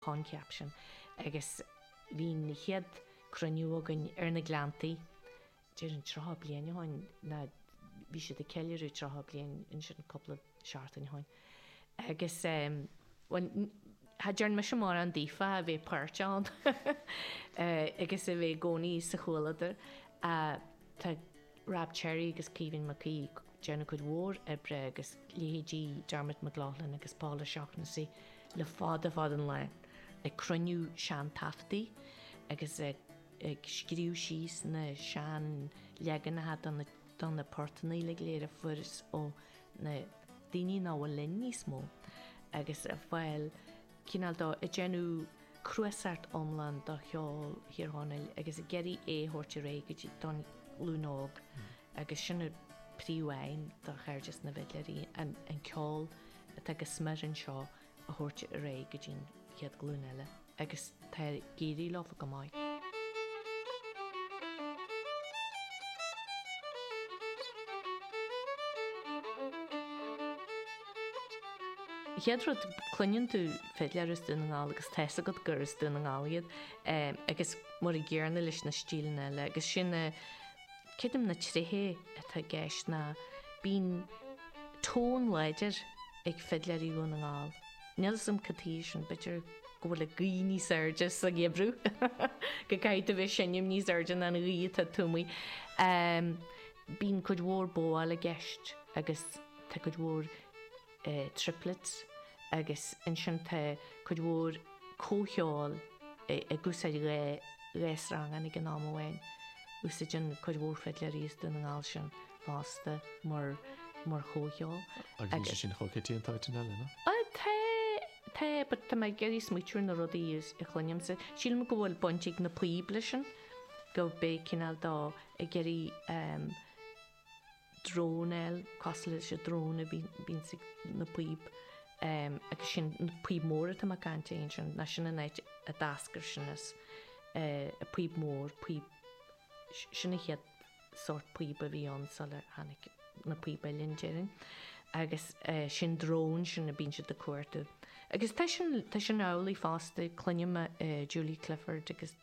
choincheap sin agus bhí an chéad cruinniú againn ar na Gleanntaí, déarfainn tríocha bliain ó shin, ná bhí siad ag ceiliúradh tríocha bliain ansin cúpla seachtain ó shin agus, bhuel, cha dtearn mise mórán daobhtha a bhí páirt ann agus a bhí i gcónaí sa chomhluadar ach tá. Rab Cherry agus Caoimhín Mac Aoidh, déanamh cuid mhór oibre agus leithéidí Dermot McLaughlin agus Paul O'Shaughnessy le fada fada an lá ag cruinniú seantaifeadtaí agus ag scríobh síos na seanleaganacha de na portannaí go léir a fuarthas ó na daoine nach bhfuil linn níos mó agus a fáil chineál de ag déanamh cnuasacht iomlán de cheol Thír Chonaill agus ag iarraidh é a thabhairt ar aghaidh go dtí an ghlúin óg agus sin an príomh aidhm do Chairdeas na bhFidléirí, an ceol atá go smior anseo a thabhairt ar aghaidh go dtí'n chéad ghlúin eile agus tá ag éirí leofa go maith. Chéad rud, cluineann tú fidléir as Dún na nGall agus tá a fhios agat gur as Dún na nGall iad agus an-dúr i gcomparáid leis na stíleanna eile agus sin a, creidim na tréithe atá i gceist ná bíonn tón láidir ag fidléirí Dhún na nGall. Níl 'fhios a'm cad tuighe sin, b'fhéidir go bhfuil an ghaoth níos airde sa gheimhreadh go gcaithfidh tú bheith ag seinm níos airde ná an ghaoth atá taobh amuigh. bíonn cuid mhór bóáil i gceist agus tá cuid mhór triplets agus ansin tá cuid mhór comhcheoil ag úsáid dhá sreangán ag an am amháin. Úsáideann cuid mhór fidléirí as Dún na nGall sin fosta mar chomhcheol. Agus níl sé sin chomh coitianta in áiteacha eile, nó? Tá, but tá mé ag iarraidh smaoitiú ar na rudaí a chluinimse. Sílim go bhfuil baint ag na píob leis sin. go bhfuil siad cineál de ag iarraidh drone a fháil, cosúil leis an drone a bhíonns ag na píob agus sin an píob mór atá mé ag caint air ansin, ná sin an áit a d'eascair sin as, an píob mór, píob, sin an chéad sórt píob a bhí ann sular tháinig na píob uilleann go hÉirinn agus sin an drone sin a bíonn siad ag cuartú. Agus tá sin, tá sin amhlaidh fosta, cluinim Julie Clifford agus.